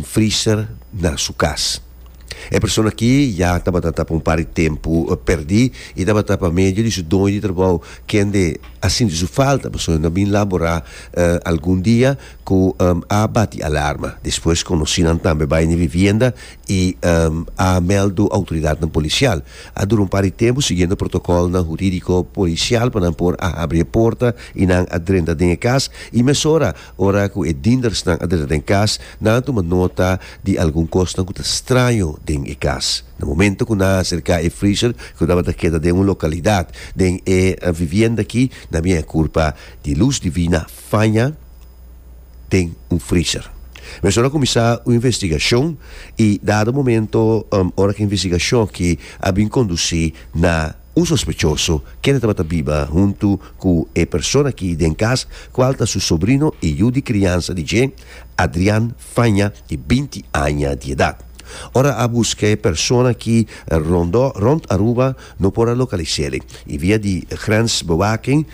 freezer na su cas. E persona aki ya tabata ta pa un par di tempu perdi y tabata pa medio di su doño di trabou kende a sinti su falta pasobra nan a bin labora algun dia cu a bati alarma. Despues conocinan tambe bay na vivienda y a meldo autoridadnan policial. A dura un par di tempu siguiendo protocolnan juridico policial pa nan por a habri e porta y nan a drenta den e cas y mesora Ora ku e diendersnan a drenta den kas, nan a tuma nota di algun kosnan ku ta straño den e kas. Na momento ku nan a aserká e freezer ku tabata keda den un lokalidat den e vivienda akí, nan bien a kulpa di lus divina faña den un freezer. Mesora a kuminsá un investigashon i dado momento ora ku e investigashon akí a bin kondusí na Un sospechoso, kende tabata biba huntu ku e persona aki den kas, kual ta su sobrino i yu di kriansa di dje, Adrian Faña, di binti aña di edat. Ora a buska e persona aki rondó rònt Aruba, no por a lokalis'é i via di grensbewaking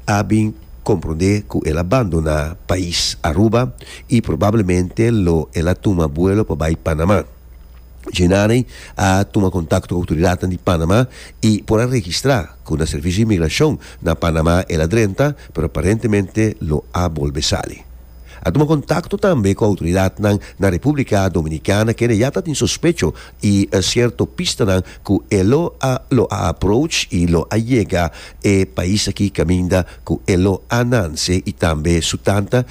a bin komprondé ku el a bandoná pais Aruba i probablemente lo el a tuma buelo pa bai Panamá. Gennari a tuma kontakto ku outoridatnan di Panama i por a registrá ku na Servisio di Migrashon na Panama el a drenta, pero aparentemente lo a bolbe sali. A tuma kontakto tambe ku outoridatnan na Repúblika Dominikana kende ya ta tin sospecho i sierto pistanan ku e lo a lo a approach i lo a yega e pais aki kaminda ku e lo a nanse i tambe su tanta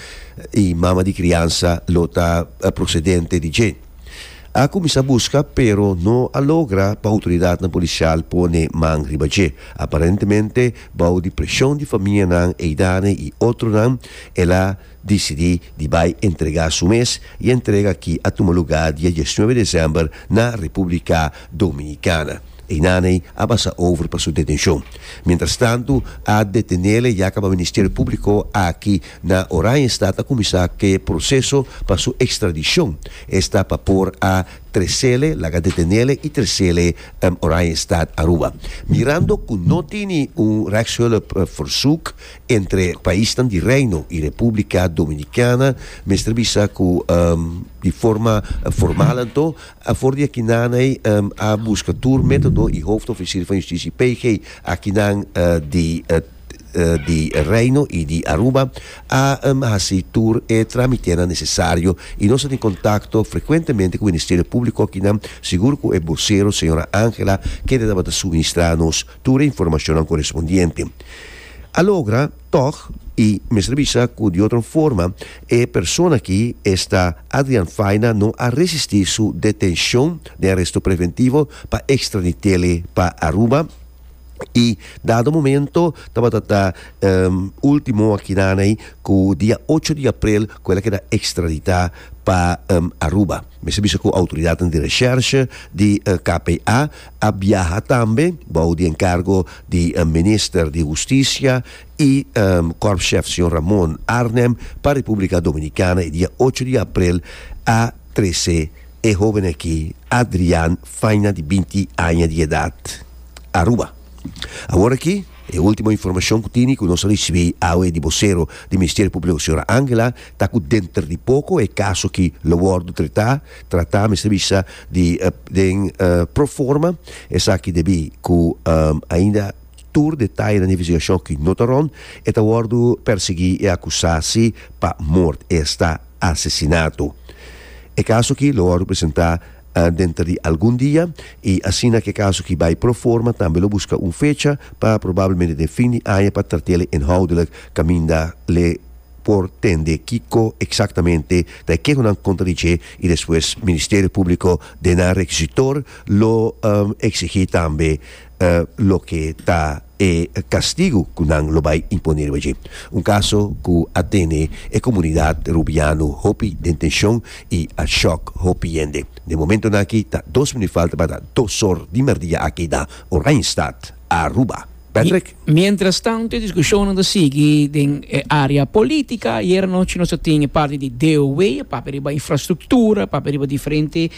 i mama di kriansa lo ta prosedente di dje. A kuminsá buska pero no a logra pa outoridatnan polisial pone man riba dje. Aparentemente bou di preshon di famianan Eidane i otronan el a disidí di bai entregá su mes i entrega aki a tuma lugá dia diesnuebe desèmber na Repúblika Dominikana. Einane a basa over pa su detenshon. Mientrastantu a detenele yaka pa Ministerio Públiko aki Na Oranjestad a kuminsá ke proseso pa su ekstradishon. Esta pa por a tresele, laga detenele i tresele Oranjestad, Aruba. Mirando ku no tini un rechtshulp versoek entre paisnan di Reino i Repúblika Dominikana, mester bisa ku di forma formal anto for di akinaney a buska tur metodo i Hoofdofficier van Justitie PJ akinan di di Reino y di Aruba a haci tur e tramitenan necesario y nos a tin contacto frecuentemente cu Ministerio Publico akinan, sigur cu e vocero Sra. Angela kende tabata suministra nos tur e informacionnan correspondiente. A logra, tog, y mester bisa cu di otro forma e persona aki, esta Adrian Faina, no a resisti su detencion den aresto preventivo pa extraditele pa Aruba, y dado momento tabata ta um ultimo aki nan ey cu dia ocho di april cu el a keda extradita pa um Aruba mester bisa cu autoridadnan di recherche di uh KPA a biaha tambe bou di encargo di uh minister di husticia y um korpschef señor Ramon Arnem pa Republica Dominicana y dia ocho di april a trece e hoben aki Adrian Faina di binti aña di edat. Aruba. Awor aki, e ultimo informacion cu tini cu nos a ricibi awe di vocero di Ministerio Publico Sra. Angela ta cu denter di poco e caso ki lo wordo treta, trata mester bisa di den pro forma, esaki debi cu ainda tur detaye na investigacion ki no ta rond, e ta wordo persegui e acusa si pa moord, esta asesinato. E caso ki lo wordo presenta. den ta di algun dia y asina ke kaso ki bay pro forma tambe lo buska un fecha pa probablemente den fin di aña pa trate'le inhoudelijk kaminda le por tende kiko exactamente ta e keho nan kontra di dje y despues Ministerio Publico den nan rekisitor lo exigi tambe loke ta e kastigu ku nan lo bai imponé riba dje. Un kaso ku a tene e komunidat Rubiano hopi den tenshon i a shòk hopi hende. Den momentonan aki ta dos minut falta pa ta dos òr di mèrdia a keda Oranjestad, Aruba. Patrick. Miéntras tantu e diskushonnan ta sigui den e área polítika. Ayera nochi nos a tin e parti di DOW, e papia riba infrastruktura, e papia riba diferente.